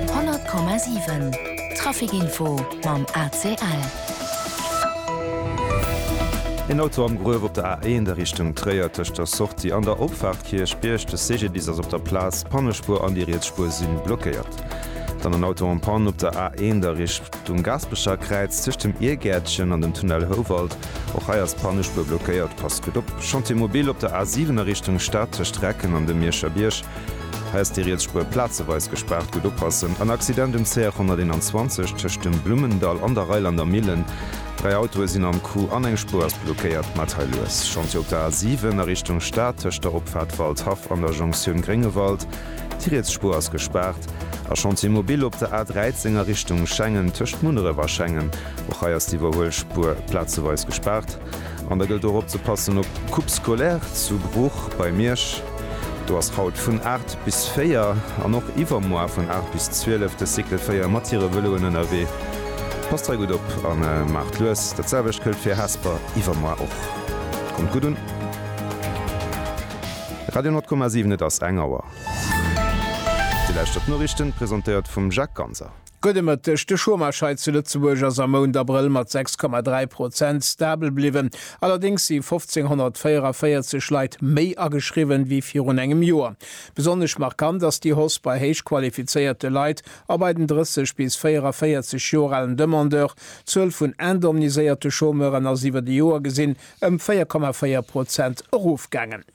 100,7 Trafic Info mam ACL. Een Auto am Gruef op der A1 a Richtung Tréier, tëscht der Sortie an der Opfaart Kierchbierg. De CGDIS ass op der Plaz. Pannespuer an déi riets Spuer si blockéiert. Dann en Auto en Panne op der A1 a Richtung Gaasperecher Kräiz, tëscht dem Iergäertchen an dem Tunnel Houwald. Och hei ass d'Pannespuer blockéiert. Passt gutt op, Chantier mobile op der A7 a Richtung Stad, tëscht Recken an dem Mierscher Bierg. Häss déi riets Spuer plazeweis gespaart, gutt oppassen, en Accident um CR 121 tëscht dem Blummendall an der Reilander Millen, dräi Autoe sinn am Coup an eng Spuer ass blockéiert. Maacht hei lues Chantier op der A 7 a Richtung Stad tëscht der Opfaart Waldhaff an der Jonktioun Gréngewald, déi riets Spuer ass gespaart. A Chantier mobile op der A 13 a Richtung Schengen tëscht Munneref a Schengen, och hei ass d'Iwwerhuelspuer plazeweis gespaart. An da gëllt och opzepassen op d'Coupe scolaire zu Bruch bei Miersch. Do ass haut vun 8 bis 4 an och iwwermoar vun 8 bis 12 de Cycle 4 mat hire Vëloen ënnerwee. Passt hei gutt op a maacht lues. Dat selwecht gëllt fir Hesper iwwermoar och. Kommt gutt un. Radio 10,7 Et ass eng Auer. Dir lauschtert d'Noriichten, presentéiert vum Jacques Ganser. Gudde Mëtteg, De Chômage hei zu Lëtzebuerg ass am Mount Abrëll mat 6,3 Prozent stabel bliwwen. Allerdéngs si 1.544 Leit méi ageschriwwen ewéi virun engem Joer. Besonnesch markant ass déi Hausse bei héich qualifizéierte Leit a bei den 30 bis 44 Joer alen Demandeurs. D'Zuel vun indemniséierte Chômeuren ass iwwer d'Joer gesinn ëm 4,4 Prozent erofgaangen.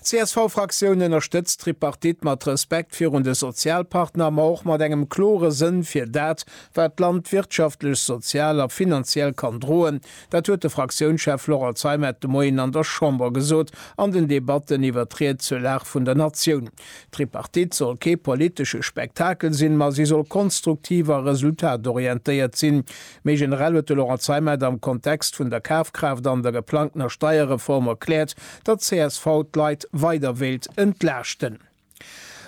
D'CSV-Fraktioun ënnerstëtzt d'Tripartite mat Respekt virun de Sozialpartner, ma och mat engem klore Sënn fir dat, wat d'Land wirtschaftlech, sozial a finanziell kann droen. Dat huet de Fraktiounschef Laurent Zeimet de Moien an der Chamber gesot an den Debatten iwwert d'Ried zur Lag vun der Natioun. D'Tripartite soll kee politesche Spektakel sinn, ma si soll konstruktiv a resultatorientéiert sinn. Méi generell huet de Laurent Zeimet am Kontext vun der Kafkraaft an der geplangtener Steierreform erkläert, datt csv d'Leit weider wéilt entlaaschten.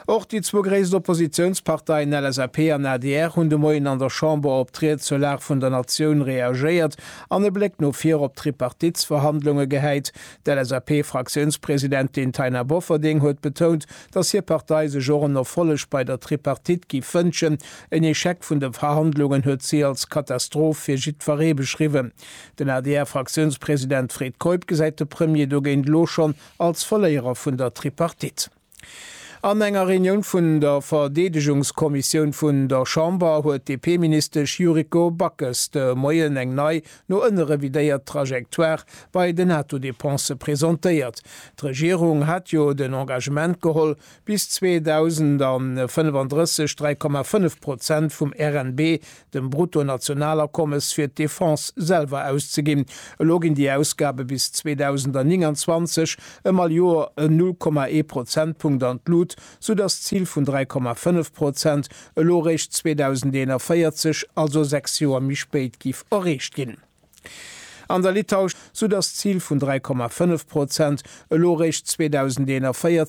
Och déi zwou gréisst Oppositiounsparteien LSAP an adr hunn de Moien an der Chamber op d'Ried zur Lag vun der Natioun reagéiert an e Bléck no vir op d'Tripartitesverhandlunge gehäit. D'LSAP-Fraktiounspresidentin Taina Bofferding huet betount, datt hir Partei sech och en Erfolleg bei der Tripartite giff wënschen. En Echec vun de Verhandlungen huet si als Katastroph fir jiddweree beschriwwen. Den ADR-Fraktiounspresident Fred Keup gesäit de Premier dogéint elo schonn als Verléierer vun der Tripartite. An enger Reunioun vun der Verdeedegungskommissioun vun der Chamber huet d'DP-Ministesch Yuriko Backes de Moien eng nei no ënne revidéiert Trajectoire bei den Netto-Dépensë presentéiert. D'Regierung hat jo den Engagement geholl, bis 2035 3,5 Prozent vum RNB, dem Bruttonationalakommes, fir d'Defense selwer auszeginn. Elo ginn déi Ausgabe bis 2029 ëm all Joer en 0,1 Prozentpunkt an d'Lut, sou datt d'Zil vun 3,5 Prozent elo eréischt 2041, also sechs Joer méi spéit, géif erreecht ginn. An der Litauisch, sou datt d'Zil vun 3,5 Prozent elo eréischt 2041,